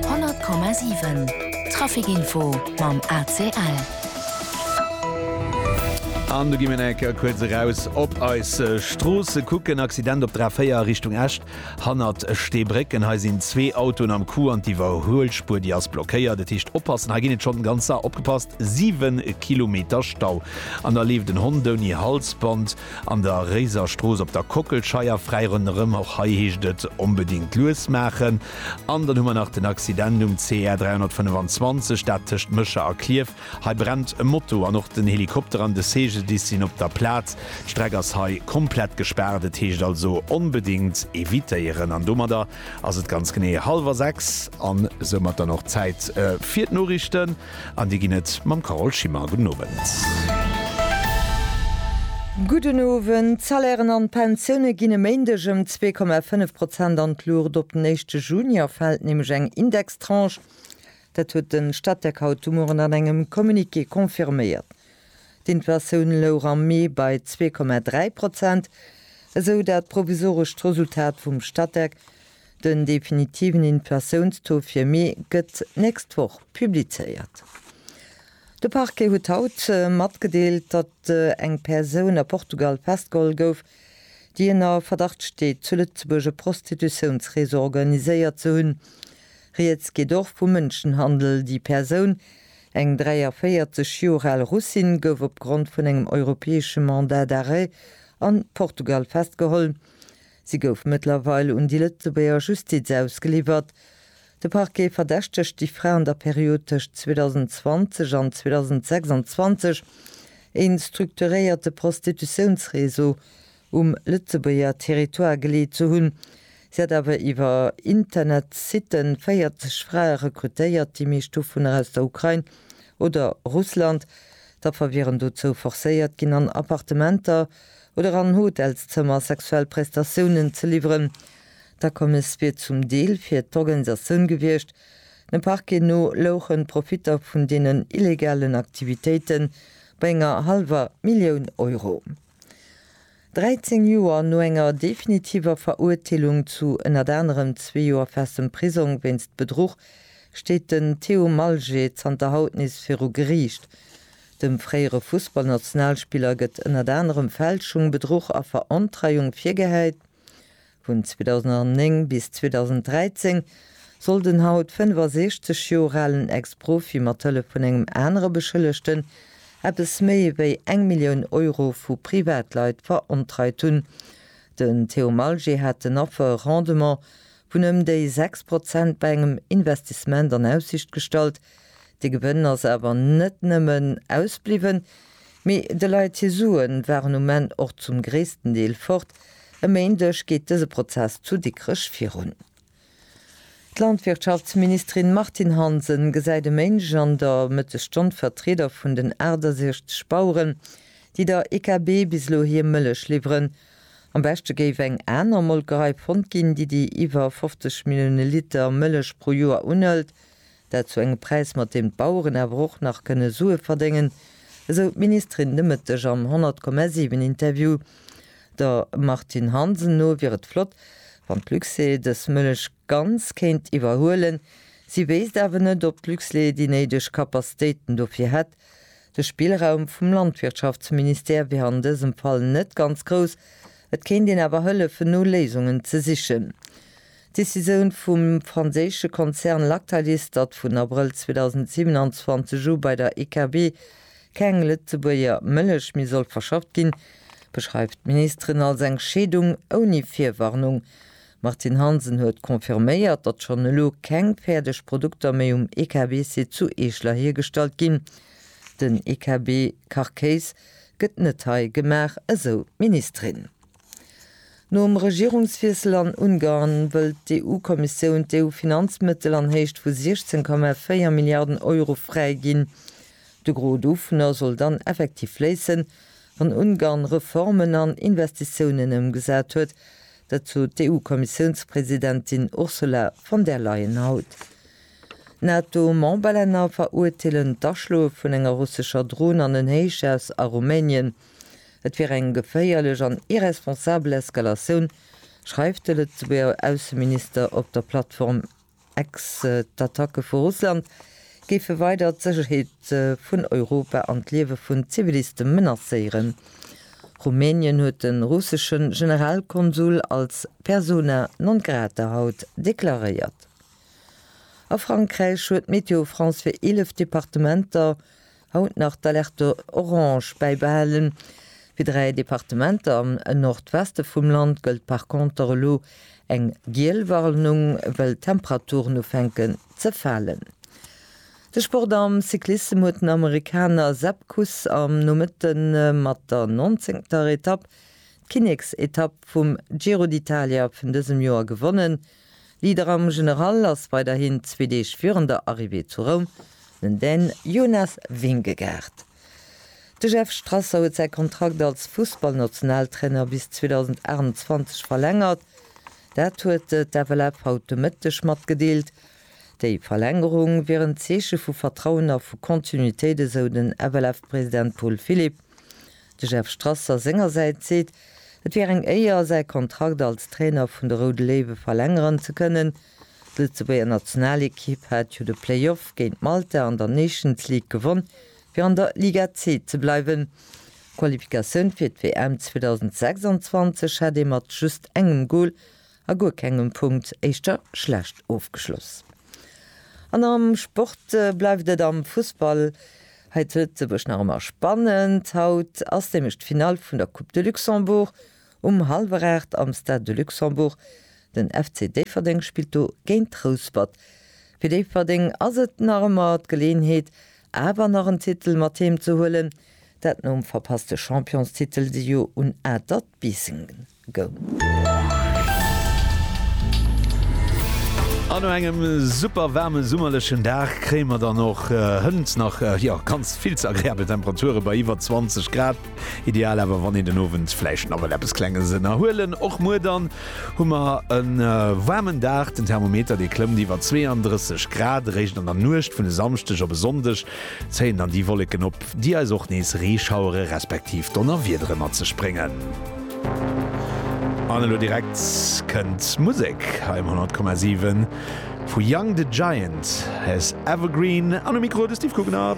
100,7 Trafic Info mam ACL. An du gi mir enke kuerz eraus op eis Stroosse kucken. Accident op der A4 a Richtung Esch hannert Steebrécken. Hei sinn zwee Autoen am Coup an d'Iwwerhuelspuer, déi ass blockéiert. Dat heescht oppassen, hei ginn et schonn den ganze, opgepasst, siwe Kilometer Stau. An da leeft en Hond ouni Halsband. An der Réiser Strooss op der Kockelscheier, fräi ronderëm, och hei heescht et onbedéngt lues maachen. An dann hu mer nach den Accident um CR 325, dat tëscht Mécher a Klierf. Hei brennt e Moto an och den Helikopter an de Segeldiss sinn op der Plaz. D'Streck ass hei komplett gespaart, et heescht also onbedéngt evitéieren. An domadder ass et ganz genee hallwer sechs an soumat dann och Zäit fir d'Noriichten. An déi ginn et mam Carole Schimmer. Gudden Owend. Gudden Owend. D'Salairen an d'Pensioune ginn e Méindeg ëm zwee Komma fënnef Prozent an d'Luucht. Op den éischte Juni erfält nämlech eng Indextranche. Dat huet de Statec haut de Mueren an engem Communiqué confirméiert. D'Inflatioun louch am Mee bei zwee Komma dräi Prozent, esou dat provisorescht Resultat vum Statec. Den definitiven Inflatiounstaux fir Mee gëtt d'nächst Woch publizéiert. De Parquet huet haut matgedeelt, datt eng Persoun a Portugal festgeholl gouf, déi ënner Verdacht steet, zu Lëtzebuerg e Prostitutiounsreseau organiséiert ze hunn. Rieds geet och vu Mënschenhandel. Déi Persoun, eng 43 Joer al Russin, gouf opgrond vun engem europäesche Mandat d'arrêt a Portugal festgeholl. Si gouf mëttlerweil un déi Lëtzebuerger Justiz ausgeliwwert. De Parquet verdächtegt déi Fra an der Period tëscht 2020 an 2026 e strukturéierte Prostitutiounsreseau um Lëtzebuerger Territoire geleet ze hunn. Si hat awer iwwer Internetsite 40 Frae rekrutéiert, déi meescht dovunner aus der Ukrain oder Russland. D'Affer wieren dozou forcéiert ginn, an Appartementer oder an Hotelszëmmer sexuell Prestatiounen ze liwweren. D'Akommes wier zum Deel fir d'Organisatioun gewiescht. Dem Parquet no louchen d'Profitter vun deenen illegalen Aktivitéite bei enger hallwer Millioun Euro. 13 Joer no enger definitiver Verurteelung zu ënnert anerem zwee Joer festem Prisong wéinst Bedruch, steet den Theo Malger zanter haut nees viru Geriicht. Dem fréiere Fussballnationalspiller gëtt ënnert anerem Fälschung, Bedruch a Verontreiung virgehäit. Vun 2009 bis 2013 soll den haut 65 Joer alen Ex-Profi mat Hëllef vun engem anere Beschëllegten eppes méi wéi eng Millioun Euro vu Privatleit verontreit hunn. Den Theo Malger hat den Affer e Rendement vun ëm déi 6 Prozent bei engem Investissement an Aussicht gestallt, De Gewënn ass awer net nëmmen ausbliwwen, mee de Leit hir Sue waren um Enn och zum gréissten Deel fort. E Méindeg geet dëse Prozess zu Dikrech virun. D'Landwirtschaftsministerin Martine Hansen gesäit e Méindeg an der Mëttesstonn d'Vertrieder vun den 68 Baueren, déi der IKB bis elo hir Mëllech liwweren. Am beschte géif eng aner Molkerei fonnt ginn, déi déi iwwer 50 Millioune Liter Mëllech pro Joer unhëlt. Dat zu engem Präis, mat deem d'Baueren awer och nach kënne Sue verdéngen, esou d'Ministerin de Mëtteg am 100,7 Interview. Der Martine Hansen no wier et flott, wann d'Luxair dës Mëllech ganz kéint iwwerhuelen. Si wéisst awer net, ob d'Luxlait déi néideg Kapazitéiten dofir hätt. De Spillraum vum Landwirtschaftsministère wier an dësem Fall net ganz grouss. Et kéint een awer hëllefen no Léisungen ze sichen. D'Decisioun vum franséische Konzern Lactalis, datt vun Abrëll 2027 u bei der IKB keng Lëtzebuerger Mëllech méi soll verschafft ginn, beschreift d'Ministerin als eng Scheedung ouni Virwarnung. D'Martine Hansen huet confirméiert, datt schonn elo keng fäerdeg Produkter méi um IKB-Site zu Eeschler hiergestallt ginn. Den IKB-Kachkéis gëtt net hei gemaach, esou d'Ministerin. Nom Regierungswiessel an Ungarn wëllt d'EU-Kommissioun d'EU-Finanzmëttel an Héicht vu 16,4 Milliarden Euro fräi ginn. De Gros dovunner soll dann effektiv fléissen, wann Ungarn Reformen an Investitiounen ëmgesat huet. Dat sot d'EU-Kommissiounspresidentin Ursula von der Leyen haut. NATO-Memberlänner verurteelen d'Aschloe vun enger russescher Dron an en Héichhaus a Rumänien. Et wier eng geféierlech an irresponsabel Eskalatioun, schreift de Lëtzebuerger Ausseminister op der Plattform X. D'Attacke vu Russland géife weider d'Sécherheet vun Europa an d'Liewe vun Ziviliste menacéieren. Rumänien huet de russesche Generalkonsul als persona non grata haut deklaréiert. A Frankräich huet Météo France fir 11 Departementer, Haut nach d'Alerte orange bäibehalen. Fir dräi Departementer am Nordweste vum Land gëllt par conter elo eng giel Warnung, well d'Temperaturen ufänken ze falen. De Sport am Cyclissem huet den Amerikaner Sepp Kuss am Nomëtte mat der nonzéngter Etapp, d'Kinneksetapp vum Giro d'Italia vun dësem Joer gewonnen. Leader am General ass weiderhin zwee Deeg virun der Arrivée zu Roum den Dän Jonas Vingegaard. De Jeff Strasser huet säi Kontrakt als Fussballnationaltrainer bis 2028 verlängert. Dat huet d'FLF haut de Mëtteg matgedeelt. Déi Verlängerung wier en Zeeche vu Vertrauen a vu Continuitéit, esou den FLF-President Paul Philipp. De Jeff Strasser sengersäits seet, et wier eng Éier, säi Kontrakt als Trainer vun de Roude Léiwe verlängeren ze kënnen. D'Lëtzebuerger Nationalekipp hat jo de Playoff géint Malta an der Nations League gewonn, fir an der Liga C ze bleiwen. D'Qualifikatioun fir d'WM 2026 hätt ee mat just engem Gol a guer kengem Punkt éischter schlecht ofgeschloss. An am Sport bleift et am Fussball. Hei d'Lëtzebuerg nach ëmmer spannend. Haut ass nämlech d'Finall vun der Coupe de Luxembourg um hallwer 8 am Stade de Luxembourg. Den FC Déifferdeng spillt do géint Rouspert. Fir Déifferdeng ass et nach ëmmer d'Geleeënheet awer nach en Titel mat heem ze huelen. Dat nom verpasste Championstitel si jo un Atert Biissen. goung. An no engem super waarme summerlechen Dag kréie mer dann och hënt nach jo ganz vill ze agreabel Temperature bei iwwer 20 Grad. Ideal awer wann een den Owend vläicht nawell eppes klenges ënnerhuelen. Och muer dann hu mer e waarmen Dag, den Thermometer dee klëmmt iwwer 32 Grad. Eréischt an der Nuecht vun e Samschdeg op e Sonndeg zéien dann déi Wolleken op. déi eis och nees Reeschauere respektiv Donnerwiedere mat sech bréngen. An elo direkt kënnt Musek hei um 100,7 vu Young the Giant, As Evergreen. An um Mikro de Steve Gugner.